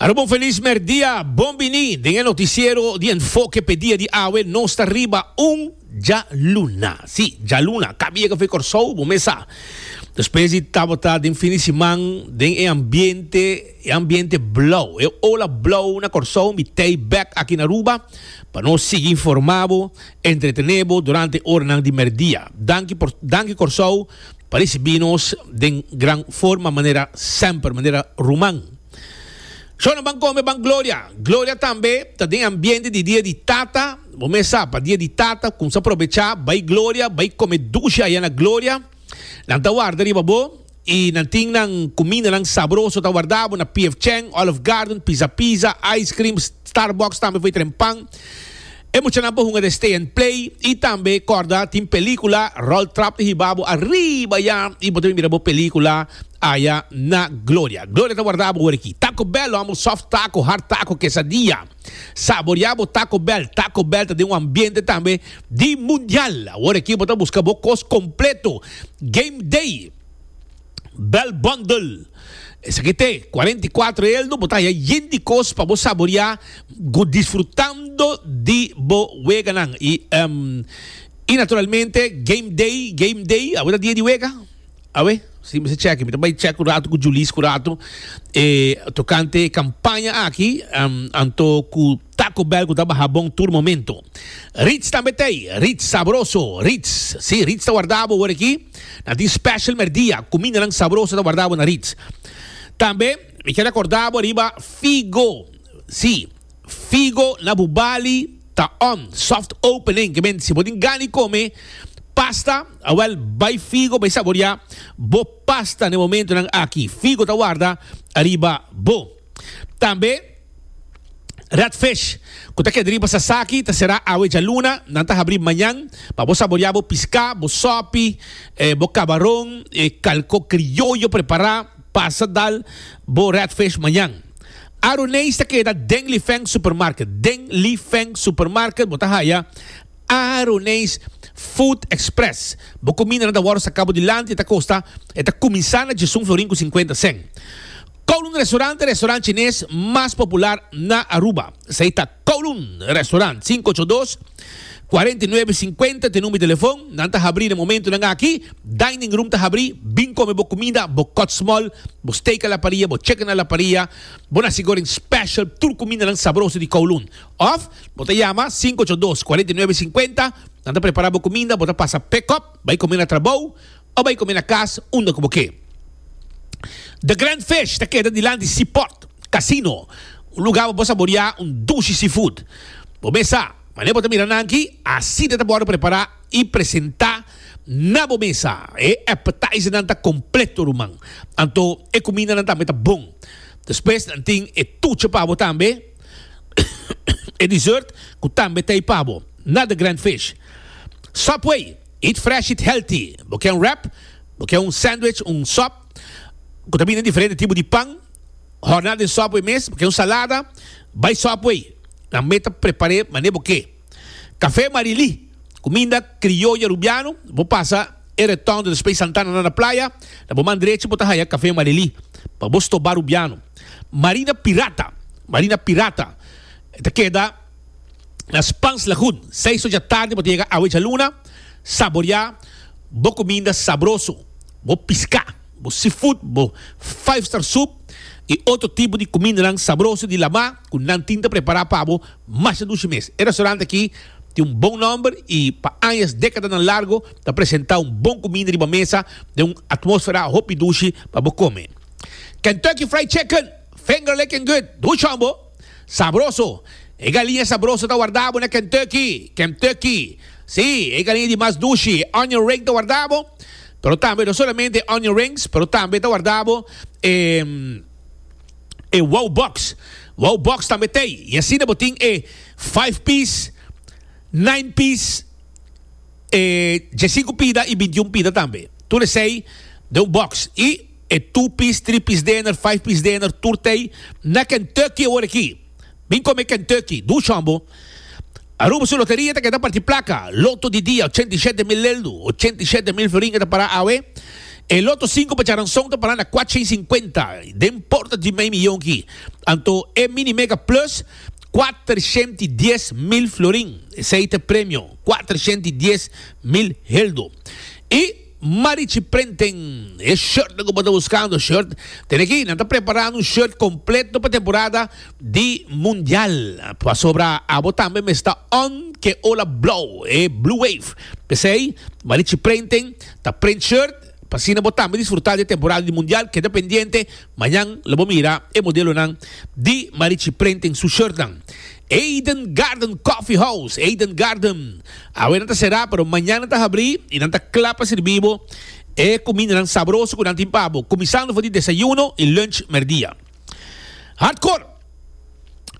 Arobo un felis merdia, bon bini den e noticiero di Enfoque p'e dia di awe, nos ta riba un djaluna, si djaluna, ka biega f'e Corsou bo mes sa, despues di tabata den fin di siman den e ambiente, e ambiente blou, e ola blou na Corsou mi tei bek aki na Aruba pa nos sigui informa bo, entretene bo durante oranan di merdia, danki por danki Corsou. Parisi binos den gran forma manera semper, manera ruman. Shona ban kome ban gloria. Gloria tambe ta den ambiente di dia di tata. Bo mes sa pa dia di tata kumsa probecha bai gloria, bai kome dushi aya na gloria. Nan ta warda riba bo i nan tin nan kumindanan sabroso ta warda bo na PF Chang, Olive Garden, Pizza Pizza, Ice Cream, Starbucks tambe for e tren pan. E muchanan por hunga den Stay and Play y tambe corda tin pelicula Rol Trap di hiba bo arriba ya y bo ta bin mira bo pelicula aya na Gloria. Gloria ta warda bo hoor aki. Taco Bell lo amo soft taco, hard taco, quesadilla. Saboria bo Taco Bell. Taco Bell ta den un ambiente tambe di mundial. Hoor aki bo ta busca bo cos completo. Game Day. Bell Bundle. Esaki t'e cuarenta y cuatro elno bo ta haya yen di cos pa bo saborea go disfrutando di bo weganan y y naturalmente game day game day awe ta dia di wega awe si mester cheki mi ta bay chek un rato cu Julis cu rato tocante e campaña aki anto cu. Taco Bell cu ta baha bon tur momento. Ritz tambe ta ey, ritz sabroso, ritz. Si, ritz ta wardabo awor aki. Nan tin special merdia, cumindanan sabroso ta wardabo na ritz. Tambe mi kier acordabo riba Figo. Si, Figo na bu bali ta on, soft opening, que menti si bo tin gan di come pasta, awel bay Figo bay saboria bo pasta na e momentonan aki. Figo ta warda ariba bo. Tambe Redfish, cu ta keda riba Sasaki, ta sera awe djaluna. Nan ta habri mañan pa bo saborea bo pisca, bo sopi, eh, bo cabaron, eh, calco crioyo prepara. Pasa dal bo Redfish mañan. Aruneis ta keda den Li Feng Supermarket. Den Li Feng Supermarket bo ta haya Aruneis Food Express. Bo cuminda nan ta wordo saca bo dilanti, e ta costa, e ta cuminsa na djesun florin cu cincuenta cent. Kowloon Restaurant e restaurant chines mas popular na Aruba. Esei ta Kowloon Restaurant, sinku ocho dos, kuarenta i nuebe sinkuenta t'e number telefon. Nan ta habrí na momentunan aki. Dining room ta habrí. Bin kome bo kumida, bo kòtsmòl, bo steak a la paria, bo chicken a la paria, bo nasi goreng special, tur kumindanan sabroso di Kowloon. Òf bo ta yama sinku ocho dos, kuarenta i nuebe sinkuenta. Nan ta prepará bo kuminda, bo ta pasa pick-up, bai kome na trabou. o bai come na cas unda cu bo ke. The Grand Fish ta keda dilant di Seaport Casino, un lugar pa bo saborea un dushi seafood. Bo mesa, mane bo ta mira nan aki, asina ta borde prepara y presenta na bo mesa. E appetizernan ta completo ruman, anto e cumindanan tambe ta bon. Despues nan tin e tucha pa bo tambe, e dessert cu tambe ta ey pa bo na The Grand Fish. Subway. Eat fresh, eat healthy. Bo ke un wrap, bo ke un sandwich, un sòp ku ta bini den diferente tipo di pan, hòrná den sòpwei mes, bo ke un salada, bai sòpwei nan mei ta prepar'é manera bo ke. Kafé Marilí, kuminda krioya rubiano, bo pasa e retòn di Respey Santana na na playa, na bo man drechi bo ta haya Kafé Marilí pa bo stobá rubiano. Marina Pirata, Marina Pirata ta keda. na Spans Lagoon, seis ocha tardi bo ta yega awe djaluna, saborea bo cuminda sabroso, bo pisca, bo seafood, bo five star soup y otro tipo di cumindanan sabroso di lama cu nan tin ta prepara pa bo masha dushi mes. E restaurante aki tin un bon nomber y pa añas, decadanan largo ta presenta un bon cuminda riba mesa den un atmosfera hopi dushi pa bo come. Kentucky Fried Chicken, finger licking good, duchon bo! Sabroso! E galiña sabroso ta wardabo na Kentucky, Kèmtukki. Sí, e galiña di mas dushi, e onion ring ta wardabo, pero tambe no solamente e onion rings, pero tambe ta wardabo e e wow box. Wow box tambe t'ei, i asina bo tin e five piece, nine piece, e djesinku pida i bintiun pida tambe. Tur esei den un box. I E two piece, three piece dinner, five piece dinner tur ta ei na Kentucky e ora aki. Bin come Kentucky, do Sean bo. Aruba su loteria ta keda parti placa, loto di dia ochenta y shete mil leldu, ochenta y shete mil feringa ta para awe. E loto cinco pa Charanzon ta para na cuatshen y cincuenta, den porta di mei miyon aki. Anto e Mini Mega Plus, cuatershent y dies mil florin, esei ta e premio, cuatershent y dies mil heldu. Y. Marichi Prenten e shirtnan ku bo ta buskando shirt ten aki nan ta prepará un shirt kompleto pa temporada di mundial pasobra abo tambe mes ta on ke ola blou e Blue Wave p'esei Marichi Prenten ta prent shirt pa asina bo tambe disfrutá di e temporada di mundial keda pendiente Mañan lo bo mira e modelonan di marichi prente en su shirtnan. Eden Garden Coffee House, Eden Garden. Awe nan ta será, pero mañan nan ta habrí i nan ta kla pa sirbí bo e kumindanan sabroso ku nan tin pa bo, kuminsando for di desayuno i lunch merdia. Hardcore!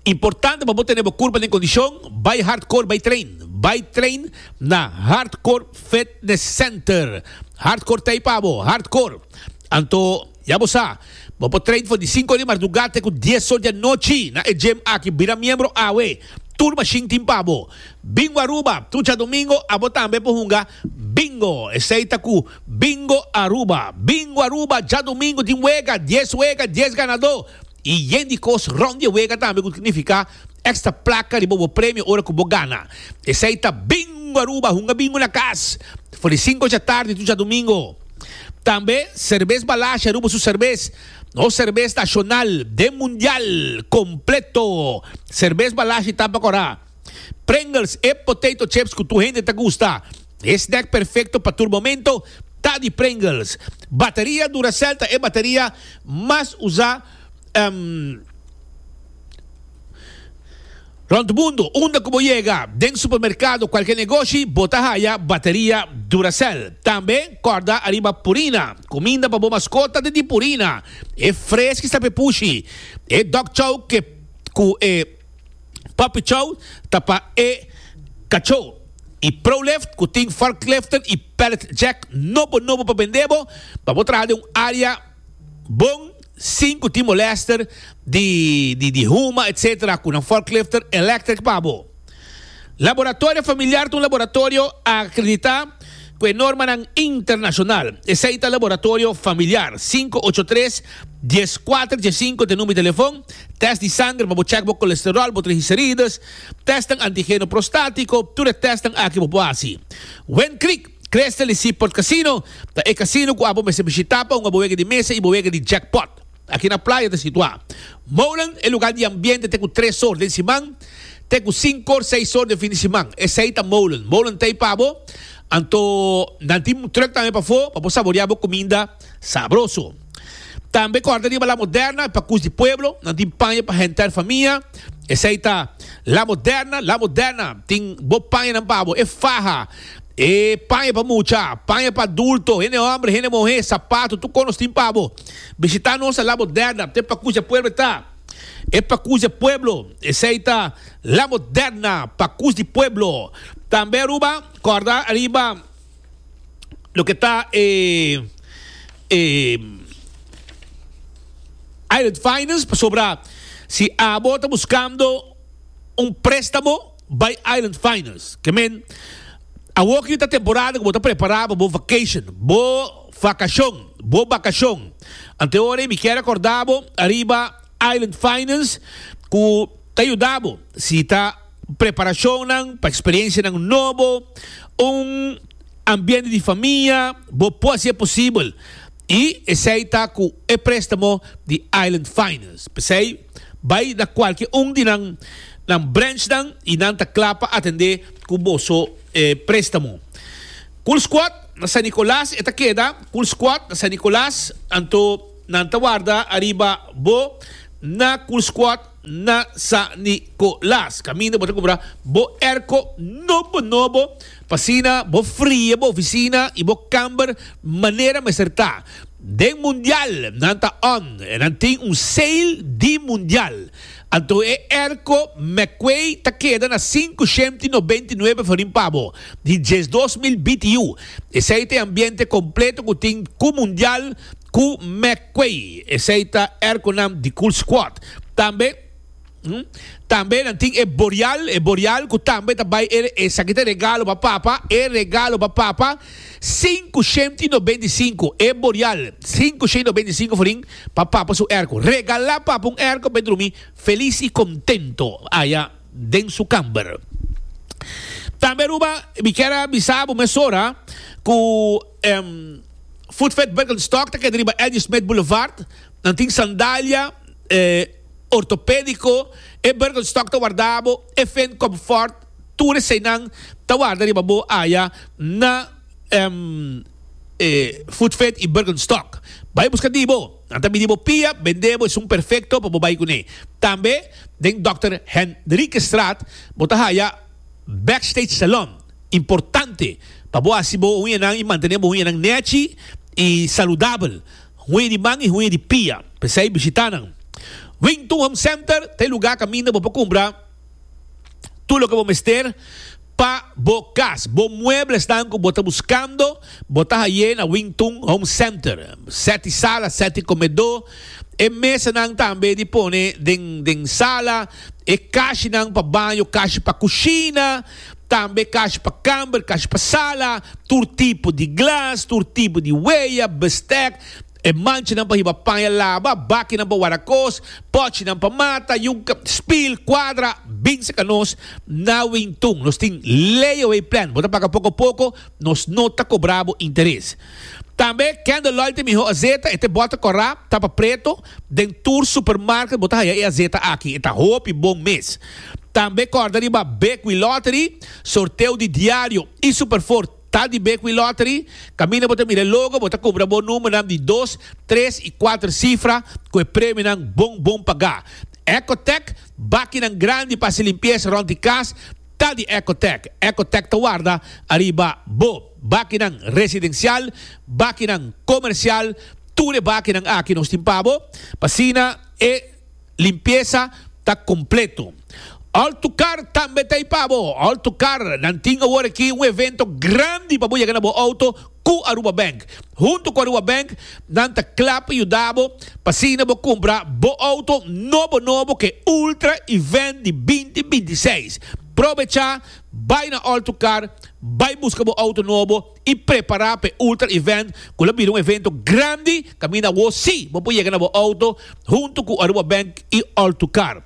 Importante pa bo tene bo kurpa den kondishon, bai hardcore, bai train. Bai train na Hardcore Fitness Center. Hardcore ta ei pa bo, hardcore! Anto. Ya bo sa, bo por train for di sinku di marduga te ku dies or di anochi na e gym aki. Bira miembro awe, tur mashin tin pa bo. Bingo Aruba, trucha domingo abo tambe por hunga Bingo, esei ta ku Bingo Aruba. Bingo Aruba djadomingo tin wega, dies wega, dies ganadó i yen di kos rònt di e wega tambe ku signifiká. extra placa riba bo premio ora cu bo gana. Esey ta Bingo Aruba, hunga bingo na cas. For di cinco dja tardi tu dja domingo. Tambe Cervez Balashi, Aruba su cervez. Nos cervez nacional den mundial completo. Cervez Balashi tampa cora. Pringles e potato chips cu tur hende ta gusta. E snack perfecto pa tur momento ta di Pringles. Bateria Duracell ta e bateria mas usa. Um, rond mundo, unda cu bo yega, den supermercado, cualkier negoshi, bo ta haya bateria Duracell. Tambe, corda ariba Purina, cuminda pa bo mascota den di Purina, e freski sta pe pushi, e dog chow ke cu e puppy chow ta pa e cacho, y Prolift cu tin forkliften y pallet jack nobo nobo pa bende bo, pa bo traha den un area bon. Sin cu tin molester di huma etc. Cu nan forklifter electric pa bo. Laboratorio familiar ta un laboratorio acredita cu e normanan internacional. Esey ta laboratorio familiar. Sinku ocho tres, dies kuater, dies sinku ta e number di telefon. Test di sanger pa bo check bo colesterol, bo trigicerides, testnan antigeno prostatico, tur e testnan aki bo por haci. Wendkriek. Crystal di Seaport Casino ta e casino cu abo mester bishita pa hunga bo wega di mesa y bo wega di jackpot. Aki na playa ta situa. Molen, e lugar di ambiente te cu tres or den siman te cu cinco or, seis or den fin di siman. Esey ta Molen. Molen ta ey pa bo. Anto nan tin truck tambe pafo pa bo saborea bo cuminda. Sabroso! Tambe kòrda riba La Moderna, e pakus di pueblo nan tin paña pa henter famia. Esei ta La Moderna, La Moderna tin bo pañanan pa bo, e faha, e paña pa mucha, paña pa adulto, hende hòmber, hende muhé, sapato, tur kos nos tin pa bo. Bishitá nos na La Moderna, te pakus di pueblo ta, e pakus di pueblo, esei ta La Moderna, pakus di pueblo. Tambe Aruba, kòrda riba loke ta e e Island Finance pasobra si abo ta buskando un prestamo bai Island Finance ke men awor ke yu ta temporada ku bo ta prepara pa bo vacation bo vakashon bo bakashon ante ora mi kier akorda bo ariba Island Finance ku ta yuda bo si ta. Preparashonnan pa eksperiensianan nobo, un ambiente di famia, bo por hasi e posibel i esei ta ku e préstamo di Island Finance. P'esei, bai na kualke un di nan nan branchnan i nan ta kla pa atendé ku boso e préstamo. Cool Squad na San Nicolas e ta keda. Cool Squad na San Nicolas, anto nan ta warda ariba bo na Cool Squad. na San Nicolas. Caminda bo ta cumpra bo airco nobo nobo pa asina bo fria bo oficina y bo camber manera mester ta. Den Mundial nan ta on e nan tin un sale di Mundial. Anto e airco McQuay ta keda na cinco shemti nobenti nuebe forin pa bo, di diesdos mil BTU. Esei ta e ambiente completo cu tin cu mundial cu McQuay. Esei ta er cu nam The Cool Squad. Tambe, hmm, tambe nan tin e Boreal, e Boreal cu tambe ta bay e, esaki ta regalo pa papa, e regalo pa papa, cinco shemti y nobenta y cinco, e Boreal, cinco shemti y nobenta y cinco forin pa papa su airco. Regala papa un airco pa e drumi feliz y contento. Aya. den su kamber. Tambe Aruba, mi kier a bisa bo mesora ku Footfed Birkenstock ta keda riba Eddy Smith Boulevard, nan tin sandalia ortopediko, e Birkenstock ta warda bo, e Fendt Comfort, tur eseinan ta warda riba bo aya na Footfed i Birkenstock. Bai buska di bo, nan ta midi bo pia, bende bo esun perfekto pa bo bai kuné. Tambe. Den Dòkter Henriquestraat bo ta haya Backstage Salon, importante pa bo hasi bo uñanan i mantené bo uñanan nèchi i saludabel, huña di man i huña di pia. P'esei bishitá nan. Wington Home Center ta e lugá kaminda bo por kumpra tur loke bo mester. pa bo cas, bo mueblesnan cu bo ta buscando, bo ta haye na Wing Tun Home Center. Seti sala, seti comedo, e mesanan tambe di pone den den sala, e cashinan pa baño, cashi pa cushina, tambe cashi pa camber, cashi pa sala, tur tipo di glas, tur tipo di weya, bestek, E manchanan pa hiba paña laba, bakinan pa wara kos, pòchinan pa mata, yuka, spil, kuadra, bin seka nos na Wingtun. Nos tin layaway plan, bo ta paga poko poko, nos no ta kobra bo interes. Tambe Kendall Lloyd e mihó azeta, e te bòter kòrá, ta pa preto, den tur supermarket bo ta haya e azeta aki, e ta hopi bon mes. Tambe kòrda riba Bekwee Lottery, sorteo di diario, i Superford. Ta di Bekwin Lottery, kaminda bo ta mira e logo bo ta kubra bo numbernan di dos, tres i kuater sifra ku e premionan bon bon pagá. Ecotec, bakinan grandi pa hasi limpiesa rònt di kas ta di Ecotec. Ecotec ta warda ariba bo bakinan residensial, bakinan komersial, tur e bakinan aki nos tin pa bo, pa asina e. limpiesa ta completo. Alto Car tambe ta ipa bo. Alto Car nan tin awor aki un evento grandi pa bo yega na bo auto cu Aruba Bank. Hunto cu Aruba Bank nan ta cla pa yuda bo pa asina bo cumpra bo auto nobo nobo cu e Ultra Event di binti binti seis. Probecha bay na Alto Car, bay busca bo auto nobo. y prepara pa e ultra event cu lo bira un evento grandi caminda awo si bo por yega na bo auto hunto cu Aruba Bank y All to Car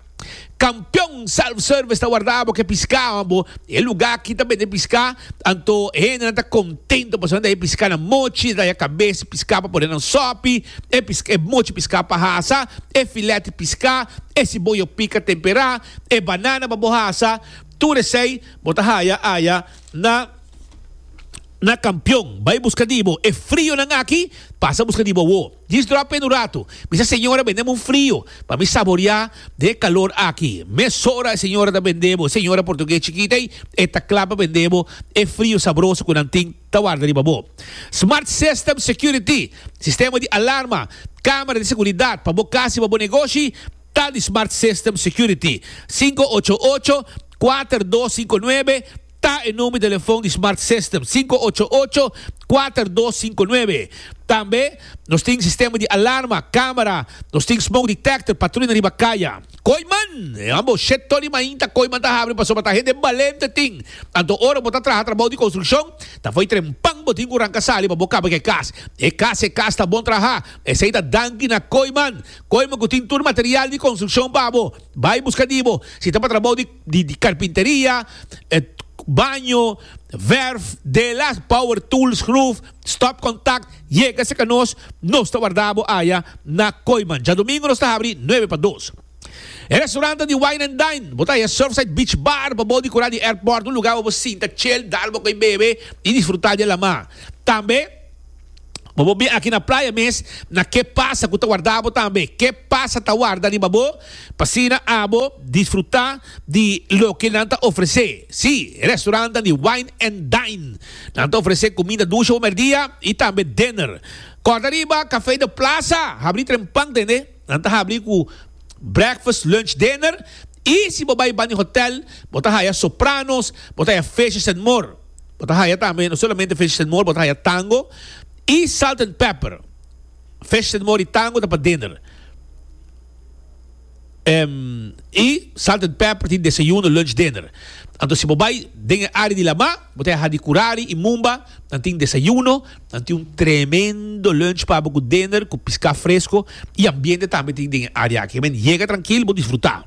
Campeon Self Service ta warda bo ke piscawan bo e luga aki ta bende pisca anto e hendenan ta contento pasobra nan ta e pisca na mochi ta ya cabes pisca pa pone nan sopi e pisca e mochi pisca pa hasa e filet pisca e siboyo pica tempera e banana pa bo hasa tur esey bo ta haya aya. na na kampion bai buska di bo e frionan aki pasa buska di bo awo djis dròp pen un ratu mi sa señora bendem un frio pa mi saboriá den e kalor aki mesora e señora ta bende bo e señora portugues chikit ei e ta kla pa bende bo e frio sabroso ku nan tin ta warda riba bo Smart System Security sistema di alarma kamera di seguridat pa bo kas i pa bo negoshi ta di Smart System Security singko ocho ocho kuater dos sinku nuebe ta e number di telefon di Smart System, sinku ocho ocho, kuater dos sinku nuebe. Tambe nos tin sistema di alarma, kamera, nos tin smoke detector, patruya riba kaya. Koiman! E ambo shet toli mainta koiman ta habri pasobra ta hende balente tin. Anto ora bo ta traha trabou di konstrukshon, ta fo'i trempan bo tin ku ranka sali pa bo kaba ku e kas. E kas e kas ta bon traha, esei ta danki na koiman. Koiman ku tin tur material di konstrukshon pa bo. Bai buska di bo, si ta pa trabou di karpinteria, baño, verf, de las power tools, schroef, stop contact, yega serka nos, nos ta warda bo aya na Koiman. Djadomingo nos ta habri nuebe pa dos. E restaurant ta di wine and dine, bo ta haya Surfside Beach Bar pa bo di kura di airport, un lugar wei bo sinta chill, dal bo kei bebe y disfruta di e lama. Tambe. Bo bo bin aki na playa mes na ke pasa ku ta warda bo tambe. Ke pasa ta warda riba bo pa asina abo disfruta di loke nan ta ofrese. Si, e restorantan di Wine and Dine nan ta ofrese kuminda dushi ora merdia i tambe dinner. Kòrda riba Café de Plaza habri trempan tende. Nan ta habri ku breakfast, lunch, dinner i si bo bai bani hotel bo ta haya sopranos, bo ta haya fishes and more. Bo ta haya tambe, no solamente Fishes and More, bo ta haya Tango i Salt and Pepper. Fishes and More i Tango ta pa dinner. Um, i Salt and Pepper tin desayuno, lunch, dinner. Anto si bo bai den e área di Lamá, bo ta haya Hadi Kurari i Mumba, nan tin desayuno, nan tin un tremendo lunch pa bo ku dinner, ku piská fresko i ambiente tambe tin den e área aki. Yega trankil, bo disfrutá.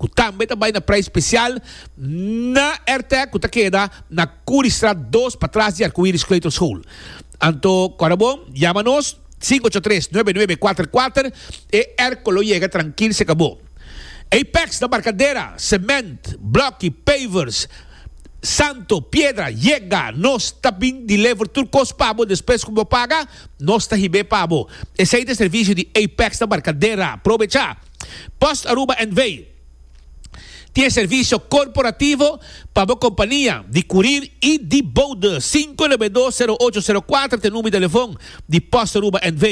ku tambe ta bai na prei spesial na Airtec ku ta keda na Curriestraat dos patras di Arcoiris Kleuterschool. Anto kòrda bon, yama nos, sinku ocho tres, nuebe nuebe kuater kuater, e Airco lo yega trankil si e ka bo. Apex na Barkadera, semènt, blòki, pavers, santo, piedra, yega, nos ta bin deliver tur kos pa bo despues ku bo paga, nos ta hib'é pa bo. Esei ta e servisio di Apex na Barkadera. Probecha! Post Aruba NV. tin e servisio korporativo pa bo kompania di kurir i di boude sinku e lebe dos sero ocho sero kuater te number telefon di Post Aruba NV.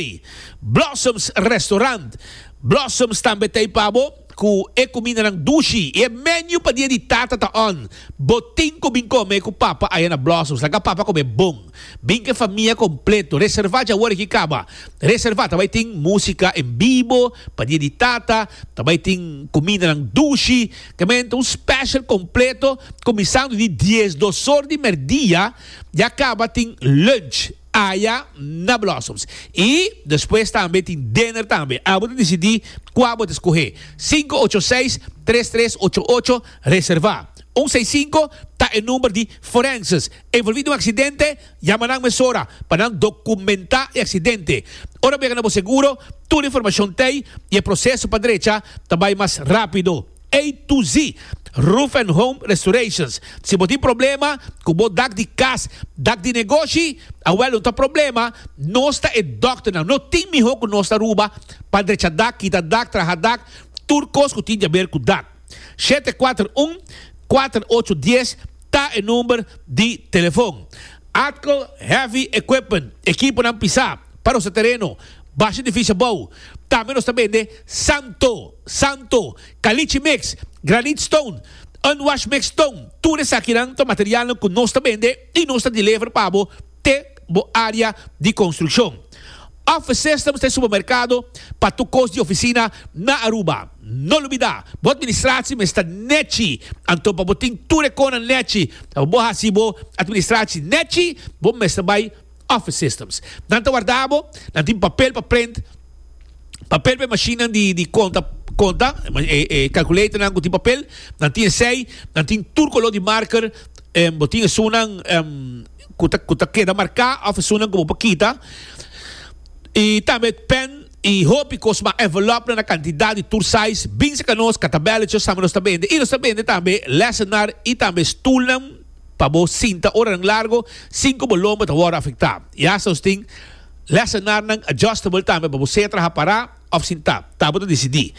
Blossoms Restaurant Blossoms tambe ta ei pa bo ku e kumindanan dushi i e menu pa dia di tata ta on. Bo tin ku bin kome ku papa aya na Blossoms laga papa kome bon. Binca famia completo reserva dja awor aki caba reserva ta bay tin musica en vivo pa dia di tata ta bay tin comidanan dushi caminda un special completo cuminsando di dies dosor di merdia ya caba tin lunch aya na Blossoms y despues tambe tin dinner tambe abo ta decidi cua bo ta scoge sinku ocho seis tres tres ocho ocho reserva un seis sinku ta e number di Forenses. A involví den un aksidente? Yama nan mesora pa nan dokumentá e aksidente. Ora bo yega na bo seguro, tur informashon t'ei i e proseso pa drecha ta bai mas rápido. A to Z Roof and Home Restorations, Si bo tin problema ku bo dak di kas, dak di negoshi, awèl no ta problema, nos ta e dòkternan. No tin mihó ku nos ta Aruba pa drecha dak, kita dak, traha dak, tur kos ku tin di haber ku dak. Shete kuater un, kuater ocho dies ta e number di telefon. Atco Heavy Equipment, ekiponan pisá pa nos ta tereno, basha edifisio abou. Tambe nos ta bende santo, santo, kalichi mix, granit stone, unwash mix stone, tur esakinan ta materialnan ku nos ta bende. y nos ta deliver pa bo te bo area di construccion. Office Systems ta e supermercado pa tur cos di oficina na Aruba. No lubida, bo administratie mes ta nechi, anto pa bo tin tur e conan nechi ta pa bo haci bo administratie nechi, bo mester bay Office Systems. Nan ta warda bo, nan tin papel pa print, papel pa e machinenan di di conta conta, e calculatornan cu tin papel, nan tin esey, nan tin tur color di marker, Bo tin esunnan cu ta cu ta keda marca of esunnan cu bo por kita y tambe pen y hopi cos mas. Envelop nan na cantidad y tur size bin cerca nos cata bela cho sama nos ta bende y nos ta bende tambe lessennan y tambe stoelnan pa bo sinta oranan largo sin cu bo lomba ta wordo afecta y hasta nos tin lessennan adjustable tambe pa bo sea traha para. òf sin ta, ta bo ta disidí.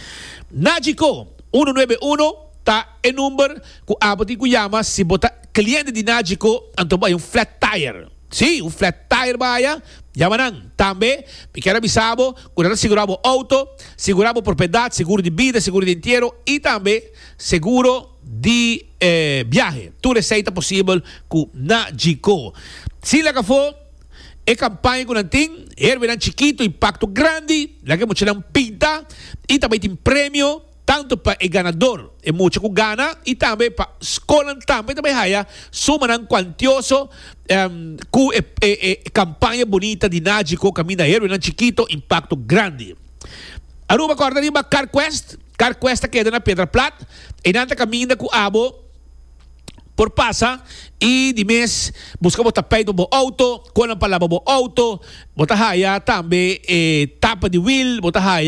Nagico uno nuebe uno ta e number ku abo tin ku yama si bo ta kliente di Nagico anto bo bai un flat tire. Sí, un flat tire baya, yama nan. Tambe mi kier a bisa bo ku nan ta sigurá bo outo, sigurá bo propiedad, seguro di bida, seguro di entiero i tambe seguro di biahe. Tur esei ta posibel ku Nagico. Si lak afó. E kampaña ku nan tin herbenan chikitu i pakto grandi, laga e muchanan pinta i tambe tin premio tantu pa e ganador, e mucha ku gana i tambe pa skolnan tambe ta bai haya sumanan kuantioso ku e kampaña bunita di Nagico kaminda herbenan chikitu i pakto grandi. Aruba kòrda riba Carquest, Carquest ta keda na Pedraplat, einan ta kaminda ku abo. por pasa y di mes busca bo tapijt pa bo auto, con nan pa laba bo auto, bo ta haya tambe e tapa di wheel, bo ta haya.